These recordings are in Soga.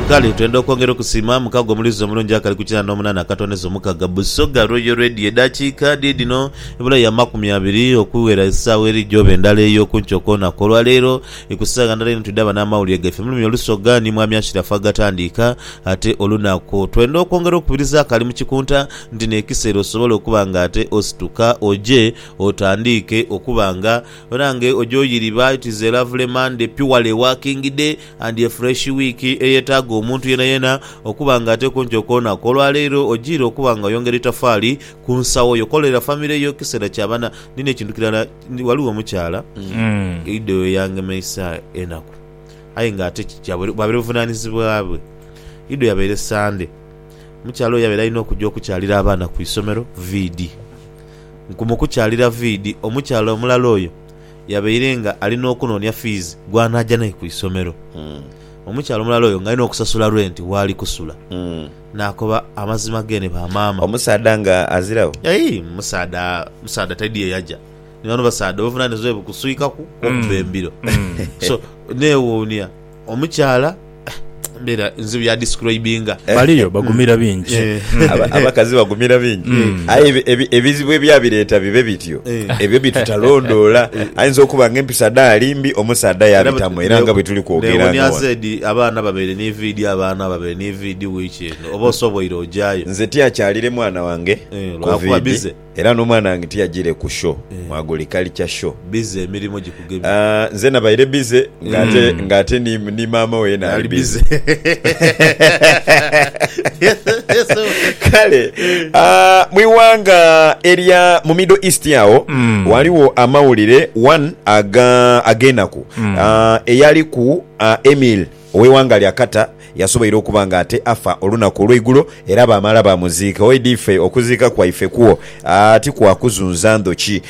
Kale twenda okwongera okusiima mukago omulizi omulungi akali ku kinaana n'omunaana akatondeza omukaga Busoga Royal Radio. Edaakiika dhiidhino ebulayo amakumi abiri okuwera esaawa eri gyooba endala ey'oku nkyo kwoonaku olwa leero. Ku saagha ndala inho twidhaba n'amawulire gaife mu lulimi olusoga ni Mwami Ashiraf agatandiika ate olunaku. Twenda okwongera okukubiriza akali mu kikunta nti n'ekiseera osobola okuba nga ate osituka oje otandiike okuba nga Banange oja oyiriba it is a lovely Monday purely working day and a fresh week eyetaaga omuntu yenayena okuba nga ateku ntyo koona ku olwaleero ojiire okuba nga oyongera itafaali ku nsawo yo kolera family yo kisera kya bana nina ekintu kirala waliwo omukyala ido eyangemeisa enaku aye nga ate bwabeera obuvunanizibwa bwe ido yabeere Sunday omukyala oyo yabeera alina okuja okukyalira abaana ku isomero VD. Nku mu kukyalira viidi, omukyala omulala oyo yabaire nga ali n'okunoonia fiizi gw'anaaja naye ku isomero. Omukyala omulala oyo ng'alina okusasula rwenti w'ali kusula. Naakoba amazima geene ba maama. Omusaadha nga aziragho? Aii, omusaadha, omusaadha taidhi ye yaja. Ni bano abasaadha obuvunaanizibwa bwe bukuswikaku kw'okubba embiro. So, neewuunia. Omukyala mbeera nzibu ya describinga. Baliyo bagumira bingi. Abakazi bagumira bingi. Aye ebizibu ebyabireeta bibe bityo, ebyo bitutalondoola. Ayinza okuba nga empisa dhe ali mbi, omusaadha yaabitamu era nga bwe tuli kwogera nga ghano. Neewunia zaidi abaana ababaire ni viidi, abaana ababaire ni viidi wiiki eno. Oba osoboire ojaayo? Nze tiakyalire mwana wange ku viidi. Era nomwana wange tiyajire ku show mwaguli culture show. Busy emirimo gikugemye. Nze nabaire busy nga ate ni maama we yena ali busy kale mwiwanga erya mu middle east agho ghaligho amawulire one agenaku eyaliku Emil. ow'eighanga lya Qatar yasoboire okuba nga ate afa olunaku olweigulo era baamala baamuziika. Oidha ife okuziika kwaife kwo ti kwa kuzunza ndhoki.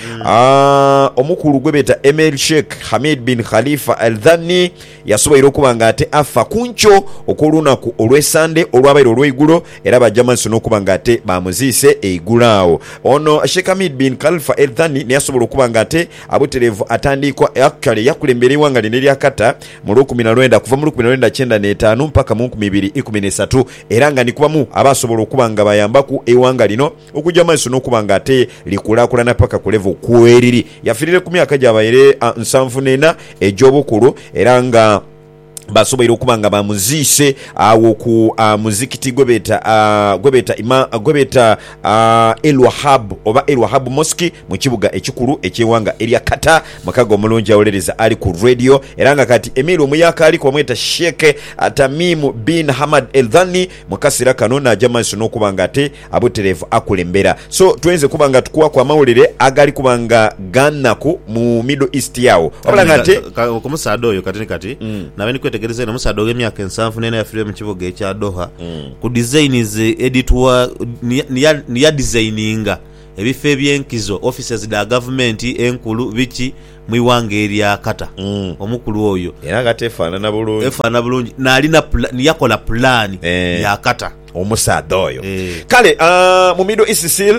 Omukulu gwe beeta Emir Sheikh Hamid bin Khalifa Al Thani yasoboire okuba nga ate afa ku nkyo okw'olunaku olwe Sande olwabaire olweigulo era baja maiso n'okuba nga ate baamuziise eigulo agho. Ono Sheikh Hamid bin Khalfa Al Thani ni yasobola okuba nga ate abutereevu atandiikwa, actually yakulembera eighanga lino erya Qatar mu lukumi na lwenda, kuva mu lukumi na lwenda kyenda n'etaanu mpaka mu nkumi ibiri ikumi n'isatu, era nga ni ku bamu abaasobola okuba nga bayambaku eighanga lino okuja mu maiso n'okuba nga ate likulaakulana paka ku level kweriri. Yafiirire ku myaka gyabaire nsanvu n'ena egy'obukulu era nga baasoboire okuba nga bamuziise agho ku muzikiti gwebeeta gwebeeta gwebeeta El Wahab oba El Wahab Mosque mu kibuga ekikulu eky'eighanga erya Qatar. Mukago omulungi awuliriza ali ku Radio era nga kati Emir omuyaakaliku bamweta Sheikh Tamim bin Hamad Al Thani mukasira kano naja mumaiso nokuba nga ate abuterevu akulembera so twenze kuba nga tukuwaku amawulire agali kuba nga ganaku mu Middle East yagho wabula nga ate Kumusaadha oyo kati ni kati nabaire ndi kwetegereza eno omusaadha oghemyaka ensanvu neena yafirira mu kibuga ekya Doha ku designs edituwa ni ya designinga Ebifo eby'enkizo, offices dha gavumenti enkulu, biki mu ighanga erya Qatar. Omukulu oyo. Era nga teefaanana bulungi. Efaanana bulungi. Naalina pulaani, yakola pulaani ya Qatar. Omusaadha oyo. Kale mu Middle East sil,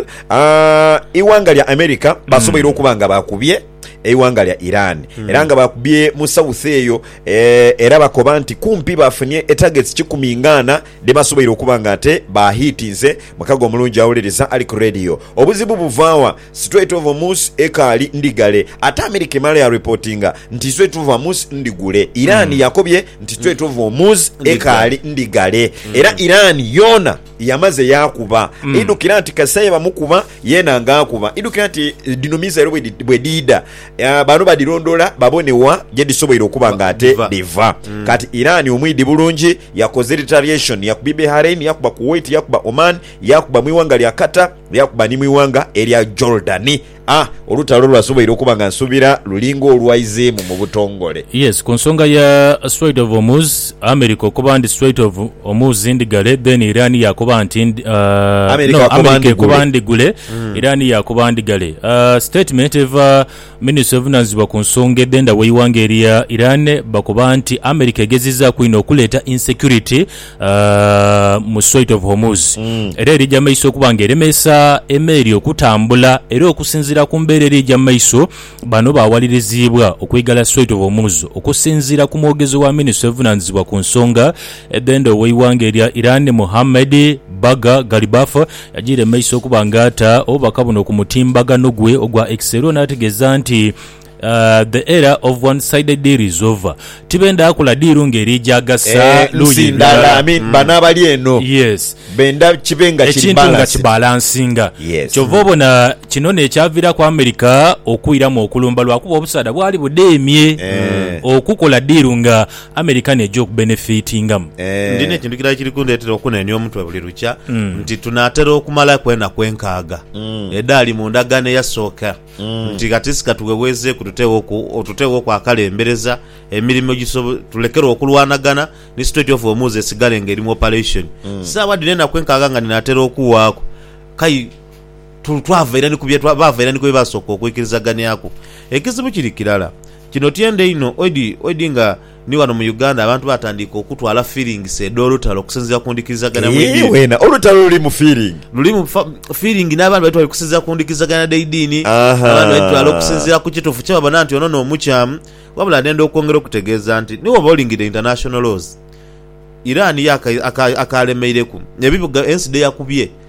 ighanga lya America basoboire okuba nga baakubye eighanga lya Iran. Era nga baakubye mu south eyo. Era bakoba nti kumpi baafunie e targets kikumi nga ana. Ni basoboire okuba nga ate ba hit nze mukago omulungi awuliriza ali ku radio. Obuzibu buva wa? Strait of Hormuz ekaali ndigale ate America emala ya reportinga nti Strait of Hormuz ndigule. Iran yakobye nti Strait of Hormuz ekaali ndigale era Iran yoona yamaze yaakuba. Idhukira nti kasita ye bamukuba yeena nga akuba. Idhukira nti dhino missile bwedhiidha Bano badhilondoola babone wa gye dhisoboire okuba nga ate dhiva. Kati Iran omwidhi bulungi, yakoze retaliation, yakubi Behrain, yakuba Kuwait, yakuba Oman, yakuba mu ighanga lya Qatar, yakuba ni mu ighanga erya Jordan. A Olutalo lwasoboire okuba nga nsubira luli ng'olwaizeemu mu butongole. Yes, ku nsonga ya Strait of Hormuz, America okoba ndi straight of omuzi ndigale then Iran yakoba nti ndi, uh, no America ekoba ndigule mm. Iran yakoba ndigale uh, statement eva ministry evunanizibwa ku nsonga edhenda weiwanga erya Iran bakoba nti America egezizaku ino okuleta insecurity uh, mu straight of Hormuz mm. era erija maiso okuba nga eremesa emeeri okutambula era okusinzira ku mbeera erija maiso Bano baawaliriziibwa okwigala Strait of Hormuz okusinziira ku mwogezi wa minisitule evunaanyizibwa ku nsonga edh'enda ow'eighanga erya Iran Mohammed Bagher Ghalibaf yagiire mu maiso okuba nga ata obubaka buno ku mutimbagano gwe ogwa X era n'ategeeza nti The era of one-sided deal is over. Tibenda kula diiru ngeri gya gasa Eh, luuyi nsi ndala. ndala, I mean, Mm. bano abali eno Yes. benda kibe nga kiri ekintu nga balanced. kibalansinga Yes. kyova obona kino nekyaviraku america okwiramu okulumba lwakuba obusaadha bwali budemye Eh. okukola diiru nga america neja okubenefitingamu Eh, Ndina ekintu kirala kiri kundetera okunenia omutwe buli lukya nti tunatera okumalaku enaku enkaaga edaali mu ndagaano eyasooka. nti katissi katuwewezzeeku tuteewoku tuteewoku akalembereza emirimo egisob tulekere okulwanagana ni Strait of Hormuz esigale nga eri mu operation saawa dhino enaku enkaaga nga dhinatera okuwaaku kai tu twava ira ni ku bye baava ira ni ku bye baasooka okwikirizaganiaku. Ekizibu kiri kirala kino tyende inho oidi oidi nga Ni wano mu Uganda abantu baatandiika okutwala fiiringisi edh'olutalo okusinziira ku ndhikirizagana mw'eidini. Weena olutalo lulimu fiiringi. Lulimu fiiringi n'abandi badhitwala okusinziira ku ndhikirizagana dh'eidini, abandi badhitwala okusinziira ku kituufu kye babona nti ono n'omukyamu. Wabula ndenda okwongera okutegeeza nti ni bw'oba olingidde International Laws, Iran yo akaalemeireku, ebibuga ensi dhe yakubye.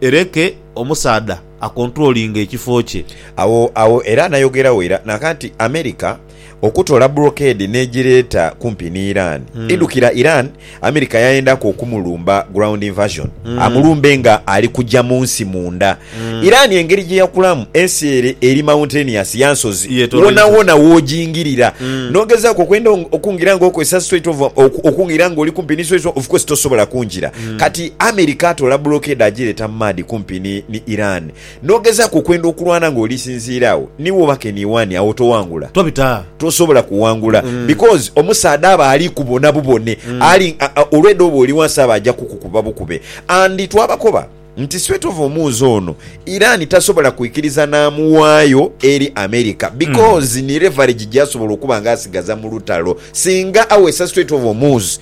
Ereke omusaadha akontulolinge ekifo kye. Agho agho era anayogeragho ira naka nti America okutola brocade nejireeta kumpi ni Iran. Idhukira Iran America yayendaku okumulumba ground invasion amulumbe nga ali kuja munsi munda. Iran engeri jeyakulamu ensi ere eri mountainous ya nsozi wonawona wojingirira nogezaku okwenda okungira nga okozesa strait of okungira nga oli kumpi ni strait of ofucourse tosobola kungira. Kati America atoola blockade ajireeta mu maadhi kumpi ni ni Iran. N'ogezaaku okwenda okulwana nga olisinziira agho, ni woba ke ni wani, agho towangula. Tobita. Tosobola kuwangula because omusaadha aba ali kubona bubone, ali olwedha oba oli wansi aba aja kukukuba bukube. And twabakoba nti sweat of omuuzi ono Iran tasobola kwikiriza n'amuwaayo eri America because ni leverage gyasobola okuba nga asigaza mu lutalo. Singa aweesa sweat of omuuzi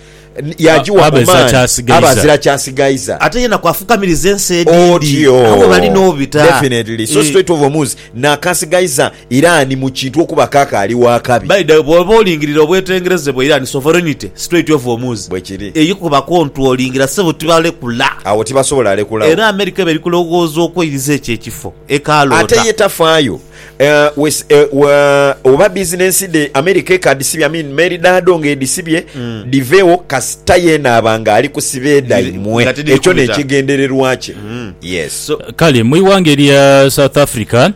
yagiwa omaani aba azira kyasigaiza ate yena kwafukamiriza ensi edindi abo bali nobita definitely so eh. straight of omuzi nakasigaiza Iran mu kintu okuba kakaali wakabi by the bwoba olingirira obwetengereze bwa Iran sovereignty straight of omuzi bwekiri eyikuba controllingira sebo tibalekula awo tibasobola alekula era America ebe erikulowooza okweiriza ekyo ekifo ekaloota ate ye tafaayo Oba bizinensi dhe America ekadhisibye I mean meri dhaadho nga edhisibye dhivewo kasita yeena aba nga ali ku sibeeda imwe. Ekyo n'ekigendererwa kye. Yes. Kale mu ighanga erya South Africa,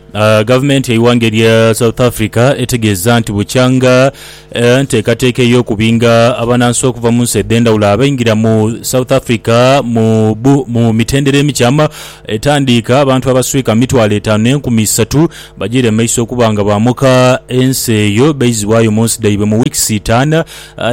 gavumenti yeighanga erya South Africa etegeeza nti bukyanga enteekateeka ey'okubinga abanansi okuva munsi edhendhawulo abaingira mu South Africa mu mitendera emikyamu, Etandiika, abantu abaswika mu mitwalo etaanu n'enkumi isatu bajiire mu maiso okuba nga baamuka ensi eyo baizibwayo mu nsi dhaibwe mu wiikisi itaanu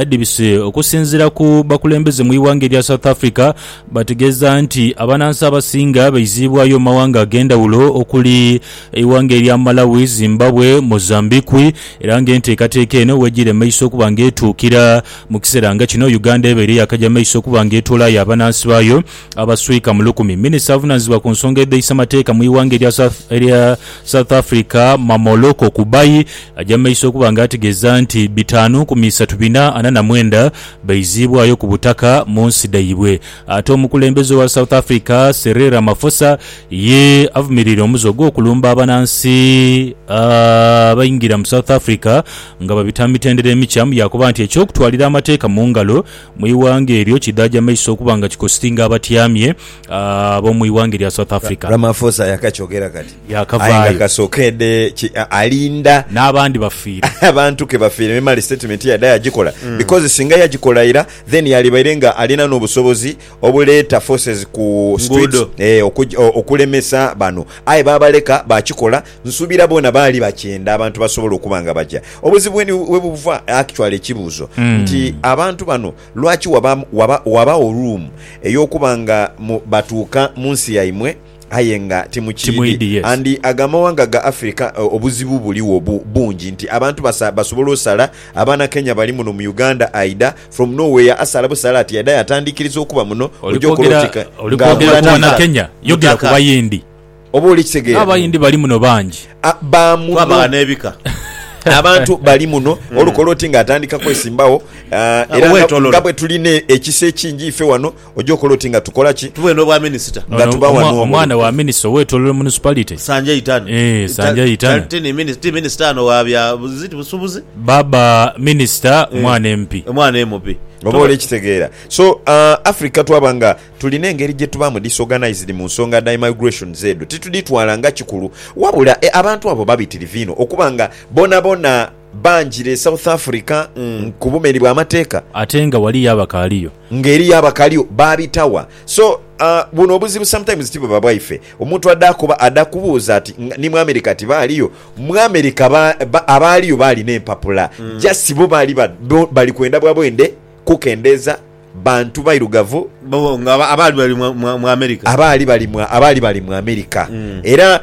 edhibise. Okusinziira ku bakulembeze mu ighanga erya South Africa, bategeeza nti abanansi abasinga baiziibwayo mu mawanga ag'endhawulo okuli eighanga erya Malawi, Zimbabwe, Mozambiqui era nga enteekateeka eno wejiire mu maiso okuba nga etuukira. Mu kiseera nga kino, Uganda ebaire yaakaja mu maiso okuba nga etoolayo abanansi baayo Abaswika mu lukumi. Minisita avunanizibwa ku nsonga edheisa mateeka mu ighanga erya erya South Africa Mamoloko Kubayi aja mumaiso okuba nga ategeza nti bitaanu ku miisatu bina ana na mwenda baiziibwayo ku butaka munsi dhaibwe ate omukulembeze owa South Africa Cyril Ramaphosa ye avumirire omuze ogwokulumba abanansi abaingira mu South Africa nga babita mu mitendera emikyamu yakoba nti ekyokutwalira amateeka mu ngalo Mu ighanga eryo kidhaja maiso okuba nga kikositinga abatyamye ab'omu ighanga erya South Africa. Ramaphosa yakakyogera kati aye nga kasokeedhe ki alinda n'abandi bafiire. Abantu ke bafiire ni male sitatimenti yadha yagikola because singa yagikola ira then yalibaire nga alina n'obusobozi obuleeta forces ku streets okulemesa bano aye baabaleka baakikola. Nsuubira boona baali bakyenda abantu basobola okuba nga baja. Obuzibu weni webuva actually ekibuuzo nti abantu bano lwaki waba waba wabagho room eyokuba nga mu batuuka munsi yaimwe aye nga timukyidi Timwidi, yes. and ago amawanga ga Africa o- obuzibu buligho bu- bungi nti abantu basa basobola osala abaana Kenya bali muno mu Uganda aidha from no where asala busala ati aidha yatandikiriza okuba muno Oli oja okola kwogera oti ka- oli nga kwogera akola ku tika. Banakenya, yogera ku Mutaka. Bayindi. Oba oli kitegeera? N'Abayindi bali muno bangi. A, ba muno. Twabagha n'ebika. Abantu bali muno. Mm. Olukola oti nga atandika kwesimbagho. Ah, era nga bwe tulina ekisa ekingi ife wano, oja okola oti nga tukola ki? Tubeere n'obwa minisita. Nga tuba wano. Omwana wa minisita ow'etolero municipality. Sanjay Itana. Eh, Sanjay Itana. Ti minisita ano wa bya ziti busubuzi. Baba minisita eh. mwana empi. Mwana emupi. Oba oli kitegeera. So, ah, Africa twaba nga. Tulina engeri gye tubaamu disorganised mu nsonga dha immigrations edho titudhitwala nga kikulu. Wabula e abantu abo babitirivu inho okuba nga bonabona banjira e South Africa ku bumeri bwa mateeka. Ate nga waliyo abakaaliyo. Nga eriyo abakaliyo baabitawa. So a buno obuzibu sometimes tibuba bwaife. Omuntu adha akuba adha kubuuza ati ni mu America tibaaliyo? Mu America ba ba abaaliyo baalina empapula just bo baali ba bali kwenda bwa bwende kukendeeza. Bantu bairugavu. Abaali bali mu Amerika. Abaali bali mu Amerika. Era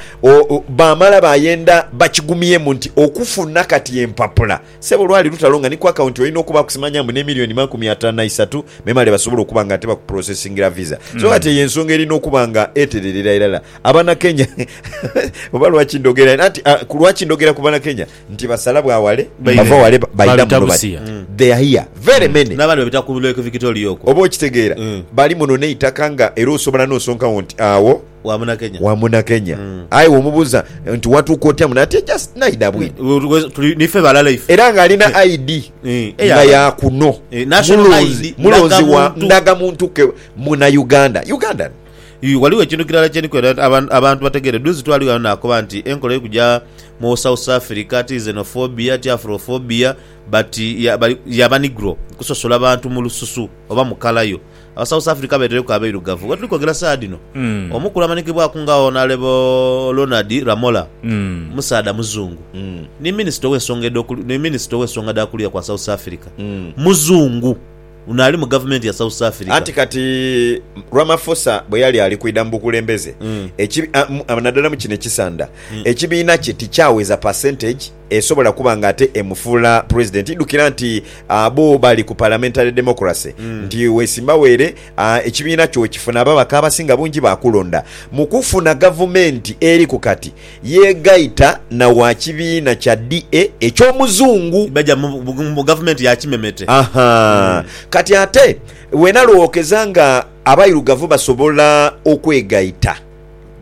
baamala baayenda bakigumyemu nti okufuna kati empapula, sebo lwali lutalo nga ni ku akawunti olina okubaaku simanya mbu n'emilioni makumi ataanu na isatu memale basobole okuba nga ate bakupulosesingira viza. So kati eyo ensonga erina okuba nga etereerera irala Abanakenya. Oba lwaki ndhogera anti ku lwaki ndhogera ku Banakenya? Nti basala bwa wale, bava wale baidha muno bati they are here very many. N'abandi babita ku Lake Victoria okwo. Oba okitegeera? Bali muno n'eitaka nga era osobola n'osonka wo nti agho Wa Munakenya. wa Munakenya. Aye womubuuza nti watuuka otya muno ati just naidha bwidha. Where's tuli nife balala ife. Era ng'alina ID Eya nga ya kuno. National Mulonzi, ID, mulonzi wa ndagamuntu. ndagamuntu ke Munauganda. Ugandan. Ghaligho ekintu kirala kye ndi kwenda abantu bategeere. Duuzi twali ghano naakoba nti enkola eri kuja mu South Africa ti xenophobia, ti Afrophobia but ya, ya Banigro, kusosola bantu mu lususu oba mu kala yo. Abasouth Africa beetereku abairugavu. Wetuli kwogera saagha dhino, omukulu amanikibwaku nga Honourable Ronald Lamola, musaadha muzungu, ni Minisita ow'ensonga edh'oku, ni Minisita ow'ensonga dha kuliya kwa South Africa, muzungu. Ono ali mu gavumenti ya South Africa. Anti kati Ramaphosa bwe yali ali kwidha mu bukulembeze, nadala mu kino ekisanda, ekibiina kye tikyaweza percentage esobola kuba nga ate emufuula Pulezidenti. Idhukira nti bo bali ku Parliamentary Democracy, nti wesimbawo ere, ekibiina kyo wekifuna ababaka abasinga bungi, baakulonda. Mu kufuna gavumenti eriku kati, Yeegaita na wa kibiina kya DA eky'omuzungu. Baja mu mu gavumenti ya kimemete. Aha. Kati ate wena lw'ookeza nga abairugavu basobola okwegaita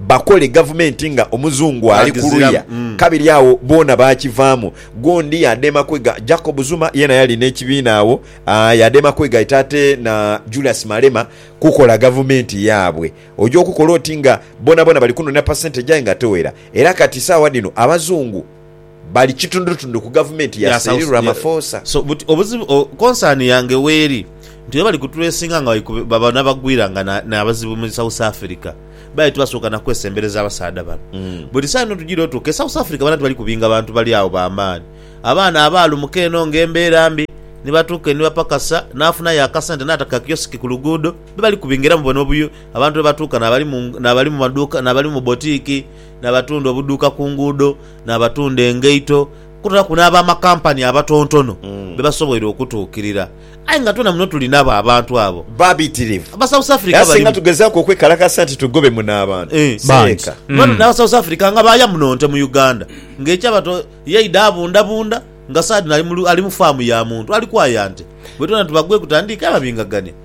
bakole gavumenti nga omuzungu ali ku luya, kabiri agho boona baakivaamu. Gundi yaadema kwega, Jacob Zuma yeena yali n'ekibiina agho, yaadema kwegaita ate na Julius Malema kukola gavumenti yaabwe. Oja okukola oti nga bonabona bali kunonera percentage aye nga tewera era kati saawa dhino abazungu bali kitundutundu ku gavumenti ya Cyril Ramaphosa. So but obuzibu o concern yange weri nti webali ku tracinga nga baba nabagwira nga nabazibu mu South Africa baali tibasooka nakwesembereza abasaadha bano but esawa eno tujira otuuka e South Africa bana tibali kubinga bantu bali agho ba maani abaana abaalumuka eno nga embera mbi nibatuuka enibapakasa nafunayo akasente nataka kioski ku luguudo Be bali kubingiramu bona obuyo, abantu be batuuka n'abali mu maduuka, n'abali mu botiiki, n'abatunda obuduuka ku nguudo, n'abatunda engaito, kwotaku n'ab'amakampani abatontono be basoboire okutuukirira. Aye nga twena muno tuli nabo abantu abo. Babitirivu. Aba South Africa balimu. Era singa tugezaaku okwekalakasa nti tugobe muno abantu, si leka. Bano n'aba South Africa nga baaya muno nte mu Uganda, ng'ekyaba to yaidha abundabunda nga saadhino ali mu faamu ya muntu ali kwaya nte. Bwe twena tubagweku tandiika yababingagania.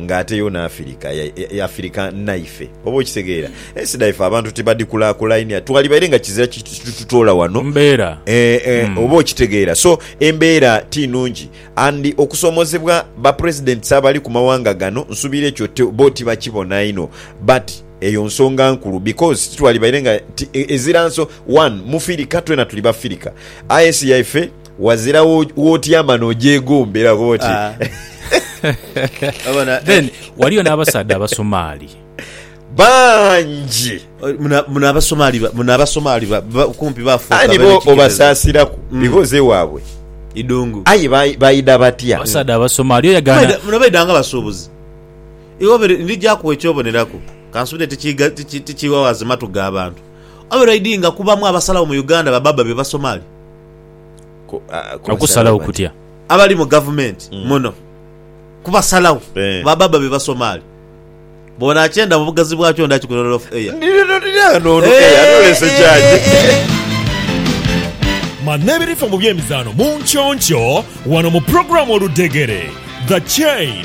Nga ate yo n'Afirika yafirika naife, oba okitegeera. Ensi dhaife abantu tibadhikulaakulainia, twalibaire nga kizira kitutoola wano, oba okitegeera. So, embeera ti nnungi. And okusoomozebwa Bapresidents abali ku mawanga gano, nsuubira ekyo bo tibakibona inho. But eyo nsonga nkulu because titwalibaire nga ezira nso. One, Mufirika, twena tuli Bafirika. Aye ensi yaife. Wazira wotyama n'ogyegomba era okoba oti, Obona? Then waliyo n'abasaadha Abasomaali. Bangi. Muno Abasomaali, muno Abasomaali kumpi baafuuka abe n'ekikerezo. Aye nibo obasaasiraku because ewaabwe idhungu. Aye baidha batya? Abasaadha Abasomaali, oyo yagaana. Muno baidha nga basuubuzi. Iwe ndija kuwa eky'oboneraku, kansuubire tikiighawaza matu ga bantu. Obeera oidhinga kubamu abasalagho mu Uganda babaaba be Basomaali? Kubasalagho kutya? Abali mu gavumenti mm. muno kubasalagho eh. baba babe Basomaali bona akyenda mu bugazi bwakyo nda kikulolof eya manna ebirifo mu byemizaano mu nkyoncho wano mu programu oludegere the chain